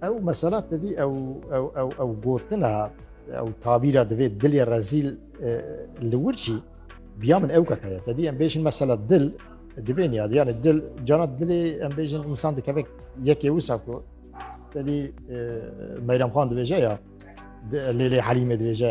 Ew mesela tedî ew ew ew ew gotina ew tabîra divê dilê rezîl e, li wir çî biya min ew kakaya tedî em bêjin mesela dil divê niyad yani dil cana dilê em bêjin însan dikeve yekê wisa ku tedî e, Meyrem Xan dibêje ya di- Lêlê Helîmê dibêje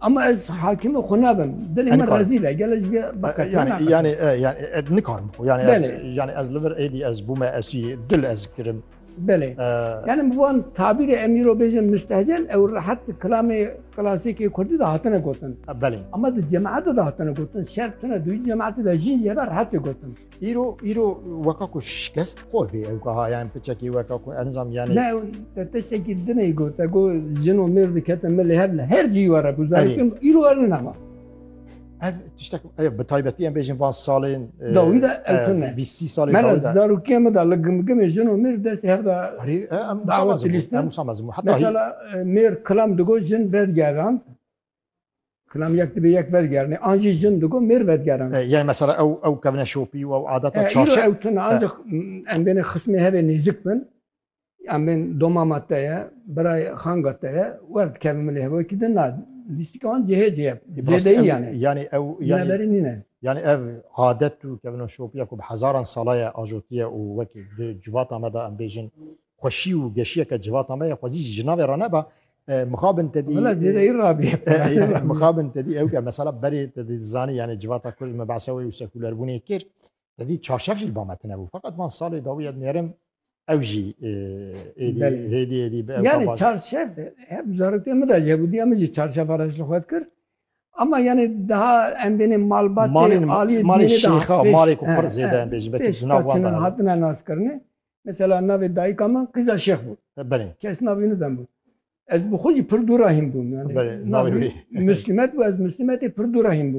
Ama ez hakimi xwe nabim. Dilê me rezîl e. Gel ji yani yani yani ez nikarim xwe. Yani yani ez li vir êdî ez bûme esî dil ez kirim. Belê. Yani bi wan tabîrê em îro bêjin müstehcen ew rehet di kilamê klasikê Kurdî de hatine gotin. Belê. Ama di cemaete de hatine gotin. Şer tune duyî cemaete de jî yê ve rehetê gotin. Îro îro weka ku şikest xor bê ew kaha yan piçekî weka ku enzam yani Ne te tesekî dinê got te got jin û mêr dikete milê hev li her cî were ku zarikim îro er ne nema. Ev tiştek ev bi taybetî em bêjin van salên e, Dawî de ew e, tune. bîsî salên Mela dawî de. zarokê me da li gimgimê jin û mêr destê hev da Herî e, em Dawet musamazim lîstin. em musamazim heta hî- Mesela e, mêr kilam digot jin vedigeran Kilam yek dibe yek vedigerine. An jî jin digo mêr vedigeran. E, yani mesela ew ew kevne şopî û ew adeta e, çarçe. Îro ew tune e. ancak em bêne xismê hevê nêzik bin. Em bên domama te ye, birayê xanga te ye, wer dikevin milê hevoyê ki din na. Lîstik an cihê cihê. Zêdeyî yani. Yani ew yani berî nîne. Yani ev adet û kevno şopiya ku bi hezaran sala ye ajotiye û wekî di civata me de em bêjin xweşî û geşiyeke civata me ye xwezî jî ji navê re neba Mixabin te dî Valla zêdeyî rabî. Mixabin te dî ew ke mesela berê te dî zanî yani civata Kurd me behsa wê û sekûlerbûnê kir. Te dî çarşev jî ba me tine bû. Feqet van salê dawî ez nêrim ew jî êdî hêdî êdî bi Yani çarşev hep zarokê min de Yehûdiya min jî çarşeva re ji xwe dikir. Ama yani daha em bênê malbatê aliyê malê şêxa malê ku pir zêde em bêjin belkî jina wan hatine naskirinê. Mesela navê dayika min Qîza Şêx bû. E, Belê. Kes navê wî bû. Ez bi xwe jî pir dûr rahîn bûm. Yani, Belê, navê wî. Muslîmet bû, ez Muslîmetê pir dûr rahîn bûm.